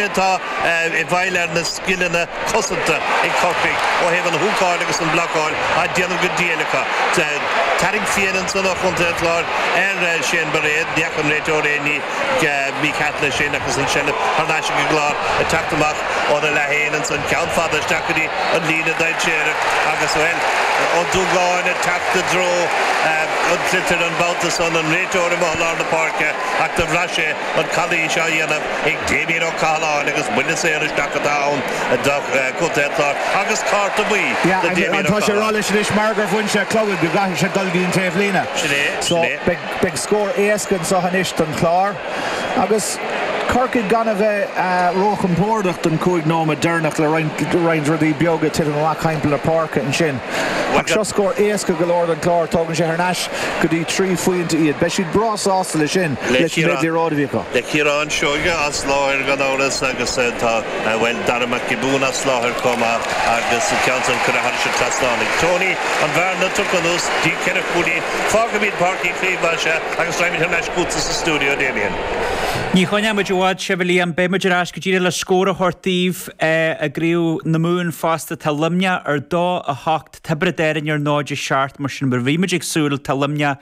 atá i bhfeighil ar na scileanna cosanta ag Corcaigh ó thaobh an húcáil agus an blocáil á déanamh go diail acu. Tarraingt fhiáin ansan ó Chontae an Chláir ar Shane Bairéad. Ní fhaca an réiteoir aon ní mícheart leis sin agus an tseilbh thar n-ais ag an gClár ag teacht amach óna leath fhéin ansan ceann fada isteach go dtí an líne dainséarach agus, bhuel, Ó Dúgáin ag teacht i dtreo an tsliotair an babhta san, an réiteoir amuigh i lár na páirce ach do bhraith sé an calaois á dhéanamh. ag Damien Ó Cathaláin agus buille saor isteach atá ann do chontae an Chláir agus cárta buí, tá sé ag rá leis anois mar gur bhain sé an clogad go gcaithfidh sé dul go dtí an taobhlíne, so. Beidh scór éasca anseo anois don Chlár agus Corcaigh gan a bheith róchompordach don chúig nóiméad deireanach le roinnt rudaí beaga ag titim amach thimpeall na páirce ansin. Ach seo scór éasca go leor don Chlár, tógann sé thar n-ais. go dtí trí phointe iad. Beidh siad breá sásta leis sin, leis an méid liathróid a bhí acu. Le Ciarán Seoige as láthair gan amhras agus tá, bhuel, Darragh Mac Giobúin as láthair chomh maith agus an ceann san curtha thar an trasnán ag Tony, an bhearna tugtha anuas, go dtí trí chúilín, fágfaimid Páirc Uí Chaoimh mar seo agus raghaimid thar n-ais chugatsa sa stiúideo, Damien. Ní choinneoimid i bhfad sibh, a Liam, beimid ar ais go díreach le scór a thabhairt daoibh i gCraobh na Mumhan fosta. Tá Luimneach ar 2, 8, Tiobraid Árainn ar 0-7 mar sin mar a bhí muid ag súil, tá Luimneach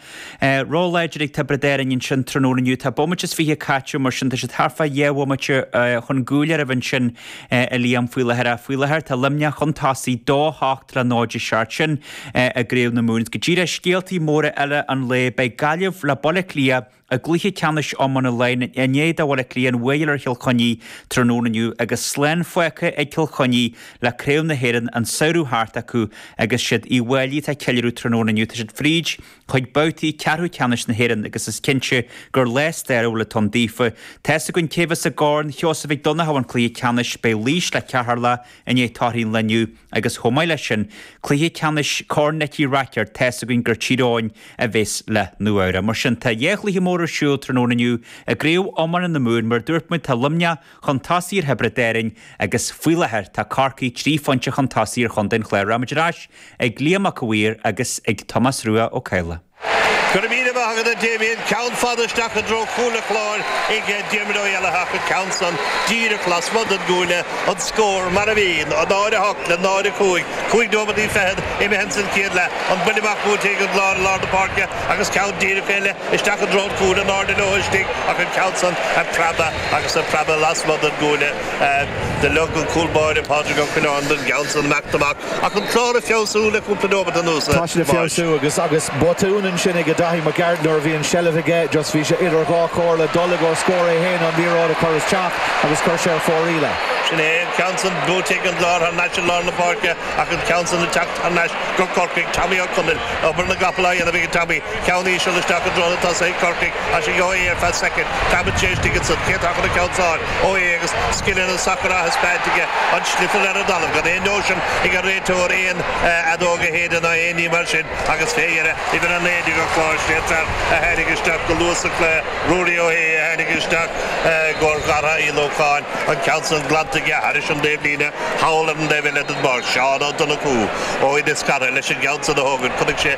róláidir ag Tiobraid Árainn ansin tráthnóna inniu, tá bomaite is fiche caite mar sin tá siad thart fá dhá bhomaite chun gcúil oraibh ansin a Liam faoi láthair ach faoi láthair tá Luimneach chun tosaigh dó hocht le 0-7 sin i gCraobh na Mumhan. Go díreach scéaltaí móra eile an lae beidh Gaillimh le Baile Átha Cliath, I gcluiche ceannais iomána Laighean i ndiaidh do Bhaile Átha Cliath an bhuaidh a fháil ar Chill Chainnigh tráthnóna inniu agus slán fágtha ag Cill Chainnigh le Craobh na hÉireann an samhradh thart acu agus is iad Uíbh Fhailí atá ag ceiliúradh tráthnóna inniu tá siad fríd chuig babhtaí ceathrú ceannais na hÉireann agus is cinnte gur lá stairiúil atá ann daofa tá 'fhios againn cé bheas i gCorn Sheosaimh Mhic Dhonnchadha an cluiche ceannais beidh Laois le Ceatharlach i ndiaidh torthaí an lae inniu. Agus chomh maith leis sin, cluiche ceannais Corn Nicky Rackard, tá's againn gur Tír Eoghain a bheas le Nua-Eabhrac. Mar sin, tá dhá chluiche mór ar siúl tráthnóna inniu i gCraobh Iomána na Mumhan. Mar a dúirt muid, tá Luimneach chun tosaigh ar Thiobraid Árainn agus faoi láthair tá Corcaigh trí phointe chun tosaigh ar chontae an Chláir. Rachaimid ar ais ag Liam Mac a' Mhaoir agus ag Tomás Rua Ó Cadhla. Go raibh míle maith agat a Damien, ceann fada isteach i dtreo chúl an Chláir ag Diarmaid Ó hÉalaithe ach an ceann san díreach lasmuigh den gcuaille an scór mar a bhí, 0-8 le 0-5, cúig nóimeataí fichead imithe ins an chéad leath, an buille amach buailte ag an gClár i lár na páirce agus ceann díreach eile isteach i dtreo an chúil in airde leo istigh ach an ceann san ag preabadh agus ag preabadh lasmuigh den gcuaille. Do lig an cúl báire Pádraig Ó Coileáin don gceann san, imeacht amach, Ach an Clár ag feabhsú le cúpla nóimeat anuas, Podge. Tá siad ag feabhsú agus agus botún ansin ag Daithí Mac Gearailt nuair a bhí an seilbh aige, just bhí sé idir dhá chomhairle, dul i gcomhair scór é féin nó an liathróid a chur isteach agus chuir sé ar fóraoil. Sin é an ceann san, buaite ag an gClár thar n-ais i lár na páirce ach an ceann san ag teacht thar n-ais go Corcaigh, Tommy Ó Conaill. Obair na gcapall á dhéanamh ag Tommy Ceann íseal isteach i dtreo tosaigh Chorcaí as an gheóighe ar feadh soicind. Cabann sé istigh ansan. Cé atá chun an ceann a fháil, Ó hAodha agus scileanna an sacair á thaispeáint aige? An sliotar ar an dtalamh, gan aon nóisean ag an réiteoir aon fheadóg a shéideadh ná aon ní mar sin, agus fé dheireadh, uimhir a naoi déag an Chláir, sé an fear a tháinig isteach go luath sa chluiche, Ruairí Ó hAodha, a tháinig isteach i gcóir Darragh Uí Lócháin, an ceann san glanta aige thairis an dtaobhlíne thall ar an dtaobh eile den bpáirc, Seán Ó Donnachú, ó Inis Cara leis an gceann san a thógaint. Chonaic sé.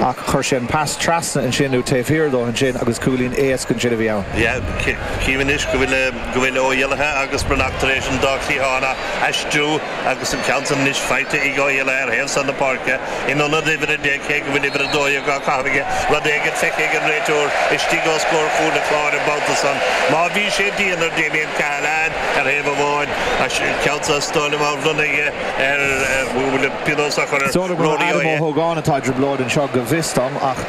Ach chuir sé an pas trasna ansin, nó taobh thiar dó ansin, agus cúilín éasca ansin a bhí ann. Yeah, chím anois go bhfuil Ó hÉallaithe agus Breathnach tar éis an dá chliathán a aistriú agus an ceann san anois faighte ag Ó hÉallaithe ar thaobh san na páirce, in ionad uimhir a deich, cé go bhfuil uimhir a dó dhéag á caitheamh aige, rud éigin feicthe ag an réiteoir istigh os comhair chúl an Chláir an babhta san. Má bhí sé dian ar Damien Cahalane ar thaobh amháin, an ceann san saor á bhronnadh aige ar, bhuel, pionós á chur ar Rory Ó hAodha. Sílim gur Adam Ó hÓgáin atá i dtrioblóid anseo go bhfios dom ach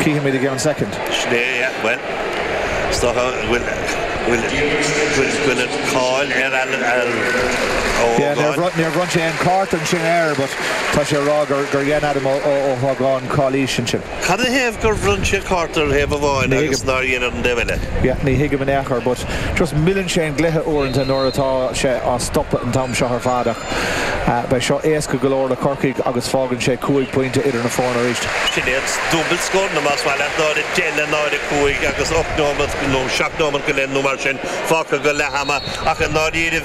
cífimid i gceann soicind. Sin é, yeah, bhuel, is dócha go bhfuil, bhfuil, bhfuil, bhfuil an cáil ar Adam, ar Ó hÓgáin. Yeah, níor bhronn, níor bhronn sé aon chárta ansin air but tá sé a rá gur, gur dhein Adam Ó, Ó, Ó hÓgáin calaois ansin. Cad ina thaobh gur bhronn sé cárta ar thaobh amháin agus nár dhein ar an taobh eile? Yeah, ní thuigim in aon chor, but just milleann sé an gcluiche uaireanta nuair atá sé á stopadh an t-am seo ar fad ach beidh seo éasca go leor do Chorcaigh agus fágann sé cúig phointe idir na foirne arís. Sin iad dúbail scóranna, más maith leat, 0-10 le 0-5 agus ocht nóiméad nó seacht nóiméad go leith nó mar sin fágtha go leath ama ach i ndáiríre,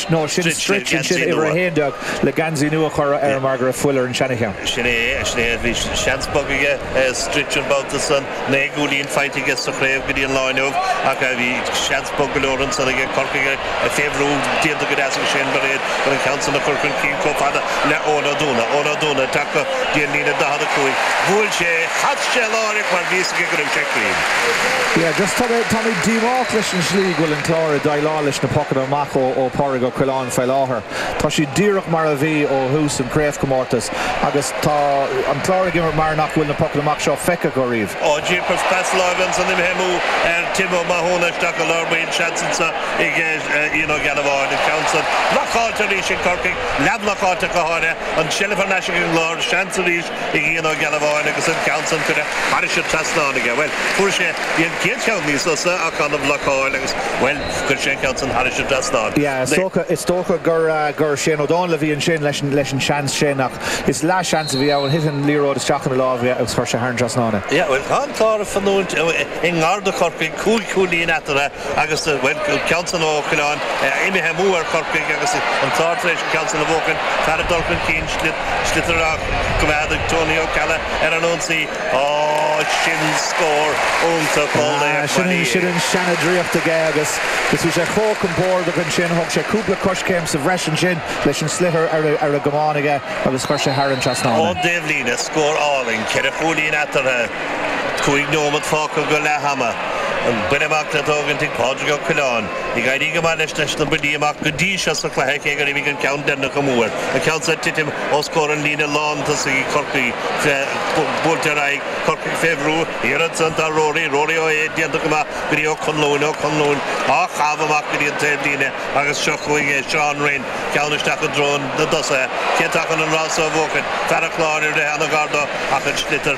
Nó sin Stritch ansin uimhir a haon déag le geansaí nua a chur air mar go raibh fuil ar an seancheann. Sin é, sin é, bhí seans beag ag Stritch an babhta san, naoi gcúilín faighte aige sa chraobh go dtí an lá inniu ach bhí seans beag go leor ansan aige Corcaigh fé bhrú, déanta go deas ag Shane Bairéad an ceann san a chur chun cinn chomh fada le Eoin Ó Dúna. Eoin Ó Dúna ag teacht go dtí an líne 45, bhuail sé, chas sé láithreach mar bhí a fhios aige go raibh sé cruinn. Yeah, just tá mé, tá mé díomách leis an slí go bhfuil an Clár ag déileáil leis na pocanna amach. ó Phádraig Ó Coileáin faoi láthair. Tá siad díreach mar a bhí ó thús an chraobhchomórtais agus tá an Clár ag imirt mar nach bhfuil na pocanna amach seo feicthe acu riamh. Ó Giacois, pas láimhe ansan imithe amú ar Tim Ó Mathúna, isteach go lár baill, seans ansan ag Ian Ó Gealbháin, an ceann san blocáilte arís ag Corcaigh, leathbhlocáilte acu, tháinig an tseilbh thar n-ais ag an gClár, seans arís Bhí Ian Ó Gealbháin agus an ceann san curtha thairis an trasnán aige. Bhuel, fuair sé, bhí an chéad cheann níos fusa ach gan a bhlocáil agus, bhuel, chuir sé an ceann san thairis an trasnán. Yeah, is dócha gur Shane Ó Dónaill a bhí ansin leis an seans sin ach is leath seans a bhí ann, thit an liathróid isteach ina lámh aige agus chuir sé thar an trasnán é. Yeah, bhuel, tá an Clár ag fanúint i ngar do Chorcaigh, cúig chúilín eatarthu. Agus, bhuel, ceann san Ó Coileáin imithe amú ar Chorcaigh agus an Clár tar éis ceann san a bhuachan, Clár ag dul chun cinn, sliotar á choimeád ag Tony Ó Ceallaigh ar an ionsaí. Á, sin scór iontach ó laoch Bhaile Uí Aodha! Sin an seana-draíocht aige agus bhí sé chomh compordach ansin, thóg sé cúpla coiscéim sa bhreis ansin leis an sliotar ar an gcamán aige agus chuir sé thar an trasnán é. Ón dtaobhlíne, scór álainn, ceithre chúilín eatarthu. Cúig nóimead fágtha go leath ama. An buille amach le tógaint ag Pádraig Ó Coileáin. Ag éirí go maith leis leis na buillí amach go dtí seo sa cluiche cé gur imigh an ceann deireanach amú air. An ceann so ag titim os comhair an líne lán tosaigh ag Corcaigh buailte ar aghaidh Corcaigh fé bhrú liathróid san do Rory. Rory Ó hAodha déanta go maith go dtí Ó Conluain. Ó Conluain á chaitheamh amach go dtí an taobhlíne agus seo chugainn é Seán Rynne. Ceann isteach i dtreo na dtosaithe. Cé atá chun an rás so a bhuachaint? Fear an Chláir ag rith ana-ghar dó ach an sliotar.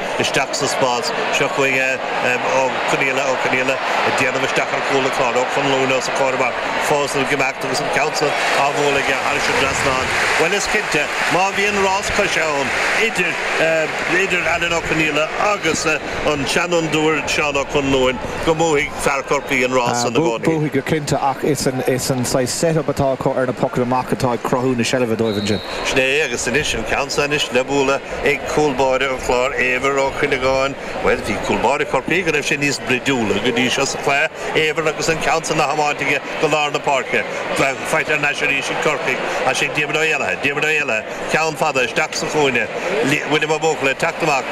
isteach sa spás. Seo chugainn é Ó Conaola, Ó Conaola ag déanamh isteach ar chúl an Chláir, Ó Conluain os a chomhair amach, fós ag imeacht agus an ceann san á bhualadh aige thairis an trasnán. Bhuel, is cinnte, má bhíonn rás coise ann idir Alan Ó Conaola agus an seanfhondúir Seán Ó Conluain, go mbuafaidh fear Chorcaí an rás san i gcónaí. Buafaidh go cinnte, ach is an saghas set-up atá acu ar na pocanna amach atá ag cruthú na seilbhe dóibh ansin. Sin é agus anois an ceann seo anois le bualadh ag cúl báire an Chláir, Éibhear Ó Cuinneagáin. Bhuel, bhí cúl báire Chorcaí go raibh sé níos bruidiúla go dtí seo sa chluiche, Éibhear agus an ceann san á thiomáint aige go lár na páirce. Faighte thar n-ais arís ag Corcaigh. As sin Diarmaid Ó hÉallaithe, Diarmaid Ó hÉallaithe, ceann fada isteach sa chúinne. William Ó Buachalla ag teacht amach.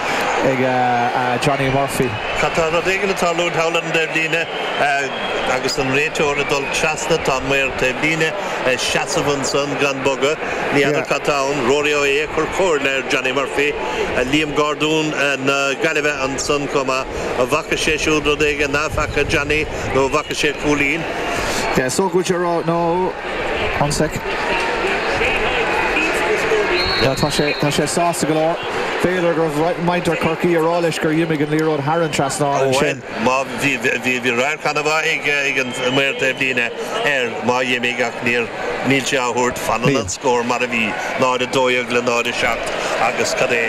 ag Johnny Murphy. Tá rud éigin ag tarlú thall ar an dtaobhlíne agus an réiteoir ag dul trasna. Tá an maor taobhlíne ag seasamh ansan gan bogadh. Ní fheadar cad tá ann. Rory Ó hAodha ag cur comhairle ar Johnny Murphy. Liam Gordon na Gaillimhe ansan chomh maith. An bhfaca sé siúd rud éigin nach bhfaca Johnny nó an bhfaca sé cúilín? Is dócha go bhfuil sé ag rá, no. One sec. Tá sé, tá sé sásta go leor. B'fhéidir go raibh muintir Chorcaí á rá leis gur dh'imigh an liathróid thar an trasnán ansin. Bhuel, má, bhí, bhí, bhí radharc ana-mhaith ag, ag an maor taobhlíne air, má dh'imigh ach níor, níl sé á thabhairt, fanann an scór mar a bhí, 0, 12 le 0, 7 agus cad é,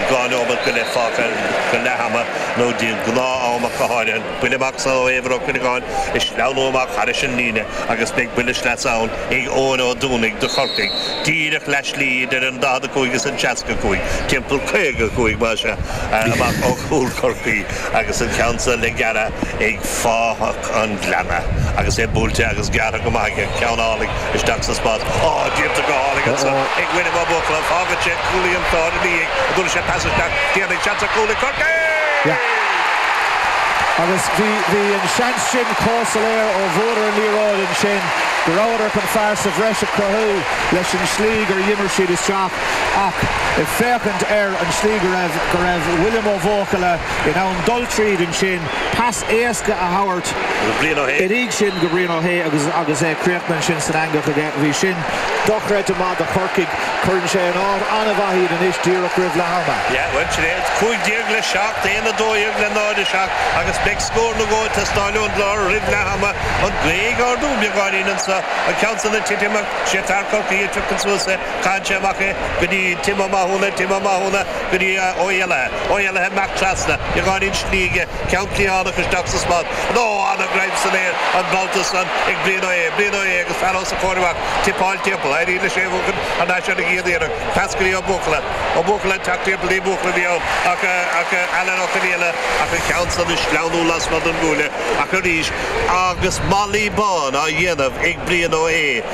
dhá neomat go leith fágtha go leath ama nó de ghnátham ach go háirithe. Buille amach sa ó Éibhear Ó Cuinneagáin ag sleamhnú amach thairis an líne agus beidh buile sleasa ann ag Eoin Ó Dúnaigh do Chorcaigh, díreach leath slí idir an 45 is an 65, timpeall 55 más ea, amach ó chúl Chorcaí agus an ceann san le gearradh ag fathach an Ghleanna agus é buailte agus gearrtha go maith aige, ceann álainn. Isteach sa spot. Á! Díomsa go hálainn ansan ag William Ó Buachalla. Fágann sé cúlaí an Chláir ina dhiaidh i dturas sé pas isteach. Déanfaidh seans an cúl ag Corcaigh! Agus bhí an seans sin chomh soiléir ó bhuadar an liathróid ansin go rabhadar chun fear sa bhreis a chruthú leis an tslí gur dhimir siad isteach ach ag féachaint ar an tslí go raibh go raibh William Ó Buachalla in ann dul tríd ansin pas éasca a thabhairt uaidh ansin go Brian Ó hAodha agus agus é críochnaithe ansin san eangach aige. Bhí sin dochreidte maith do Chorcaigh. Cuireann sé in áit an-mhaith iad anois díreach roimh leath ama. Yeah, well, sin é. 15 le 7, 1, 12 le 0, 7, agus beidh scór nó dhó ag teastáil ón gClár roimh leath ama. An gaoth ag ardú beagáinín anseo, an ceann san ag titim ach sé fear Chorcaí a phiocfaidh suas é. Caitheann sé amach é go dtí Tim Ó Mathúna, Tim Ó Mathúna, Go dtí Ó hÉalaithe, Ó hÉalaithe amach trasna, i ngar don slí aige ceann cliathánach isteach sa spot. Ó ana-ghreim san aer an babhta san ag Brian Ó hAodha, Brian Ó hAodha agus fear os a chomhair amach tipeáil timpeall, éirí leis é a mhúchadh thar n-ais ar an gcéad iarracht, pas go dtí Ó Buachalla, Ó Buachalla ag teacht timpeall, ní Buachalla a bhí ann ach ach Alan Ó Conaola, ach an ceann san ag sleamhnú lasmuigh den gcuaille, ach arís agus malaí bán á dhéanamh ag Brian Ó hAodha.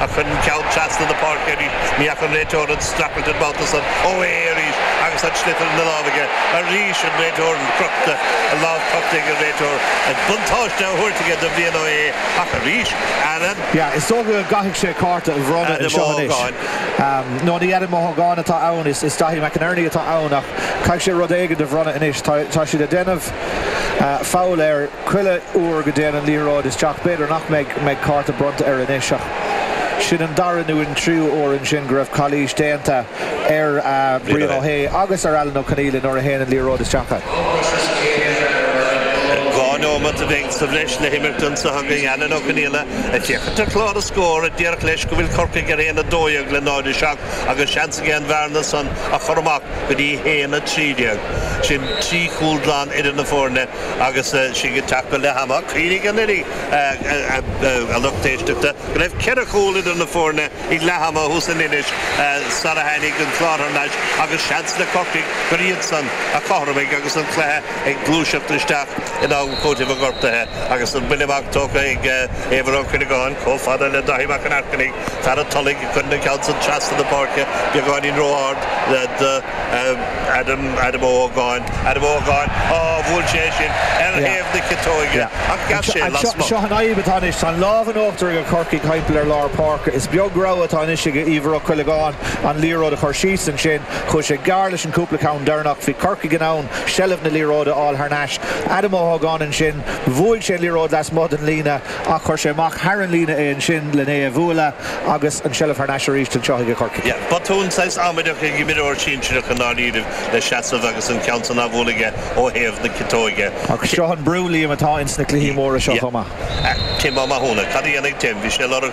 Ach chuir an ceann trasna na páirce arís. Ní fhaca an réiteoir an streachailt an babhta san Ó hAodha arís agus an sliotar ina lámh aige arís, an réiteoir crochta, an lámh crochta ag an réiteoir, an buntáiste á thabhairt aige do Bhrian Ó hAodha ach arís Alan. Yeah, is dócha go gcaithfidh sé cárta a bhronnadh anseo anois. No, ní Adam Ó hÓgáin atá ann, is Daithí McInerney atá ann ach caithfidh sé rud éigin a bhronnadh anois, tá siad ag déanamh foul ar, Chuile uair go dtéann an liathróid isteach, b'fhéidir nach mbeidh cárta bronnta air anois, ach sin an dara nó an tríú huair ansin go raibh calaois déanta ar Brian Ó hAodha agus ar Alan Ó Conaola nuair a théann an liathróid isteach. Dhá nóimeat a bheidh sa bhreis le himirt ansa chugainn Alan Ó Conaola ag féachaint ar chlár an scóir a déarfaidh leis go bhfuil Corcaigh ar aon a dó dhéag le 0, 7 agus seans aige an bhearna san a chur amach go dtí 1, 13. Sin trí chúl glan idir na foirne. Agus sinn ag teacht go leath ama, cuimhnigh anuraidh a lucht éisteachta go raibh ceithre chúl idir na foirne ag leath ama thuas in Inis sara tháinig an Clár thar n-ais agus seans le Corcaigh gur iadsan a chothromaigh agus an cluiche ag gluaiseacht isteach in am cúitimh do ghortuithe agus an buille amach tógtha ag Éibhear Ó Cuinneagáin chomh fada le Dáithí Mac an Aircinnigh, fear an Tulaigh ag cur an ceann san trasna na páirce beagáinín ró-ard dó. Adam, Adam Ó hÓgáin, Adam Ó hÓgáin, á, bhuail sé é sin ar Yeah. thaobh na ciotóige Yeah. ach ghabh sé Ach seo, lasmuigh. seo an fhadhb atá anois, tá an lámh in uachtar ag Corcaigh thimpeall ar lár páirce. Is beag rogha atá anois ag Éibhear Ó Cuileagáin an liathróid a chur síos ansin. Chuaigh sé gearr leis an cúpla ceann deireanach. Bhí Corcaigh in ann seilbh na liathróide a fháil thar n-ais. Adam Ó hÓgáin ansin, bhuail sé an liathróid lasmuigh den líne. Ach chuir sé amach thar an líne é ansin len é a bhualadh agus an tseilbh thar n-ais aríst anseo aige Corcaigh. Yeah, botún saghas amaideach ag imreoir sinsireach i ndáiríribh le seasamh agus an ceann san a bhualadh aige ó thaobh na ciotóige. Ach seo an brú, Liam, atá ins na cluichí móra seo chomh maith. Yeah. Tim Ó Mathúna. Cad a dhéanfaidh Tim? Bhí sé ag lorg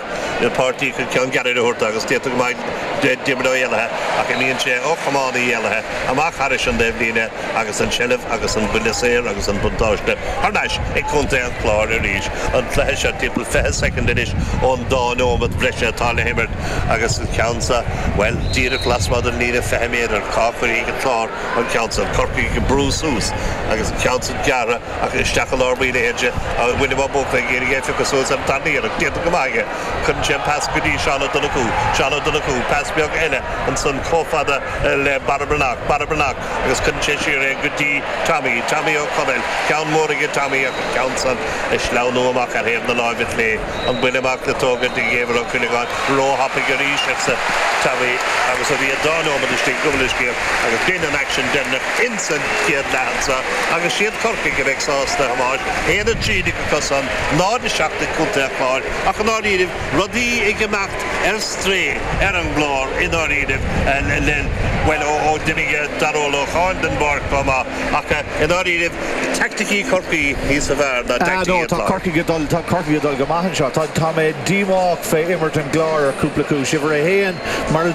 páirtí chun ceann gearra a thabhairt dó agus d'fhéadfadh go mbeadh Diarmuid Ó hÉalaithe ach imíonn sé ó chamán Uí Éalaithe amach thairis an taobhlíne, Agus an tseilbh agus an buille saor agus an buntáiste thar n-ais ag Contae an Chláir arís. An cluiche seo timpeall fiche soicind anois ón dá neomat bhreise atá le himirt agus an ceann san, bhuel, díreach lasmuigh den líne fiche méadar. Cá gcuirfidh an Clár an ceann san? Corcaigh ag brú suas agus an ceann san gearra isteach i lár buí na hInse agus William Ó Buachalla ag iarraidh é a phiocadh suas ar an tarna iarracht. Déanta go maith aige. Cuireann sé an pas go dtí Seán Ó Donnchú. Seán Ó Donnchú, pas beag eile ansan comh fada le Barra Breathnach. Barra Breathnach. agus cuireann sé siar é go dtí Tommy, Tommy Ó Conaill, ceann mór aige Tommy ach an ceann san ag sleamhnú amach ar thaobh na láimhe clé, an buille amach le tógaint ag Éibhear Ó Cuileagáin róthapaidh arís, arsa Tommy agus bhí an dá nóimead istigh, gabh mo leithscéal agus b'in an action deireanach insan chéad leath ansan agus is iad Corcaigh a bheidh sásta, a Thomáis, 1-13 acusan, 0-7 ag Contae an Chláir ach i ndáiríribh, rudaí ag imeacht. ar strae ar an gClár i ndáiríribh, bhuel, ó d'imigh Darragh Ó Lócháin den bpáirc chomh maith, ach i ndáiríribh, taicticí Chorcaí níosa bhfearr ná taicticí an Chláir. Á, tá Corcaigh ag dul go maith anseo. Tá mé díomách fé imirt an gCláir ar cúpla cúis. Uimhir a haon, mar a.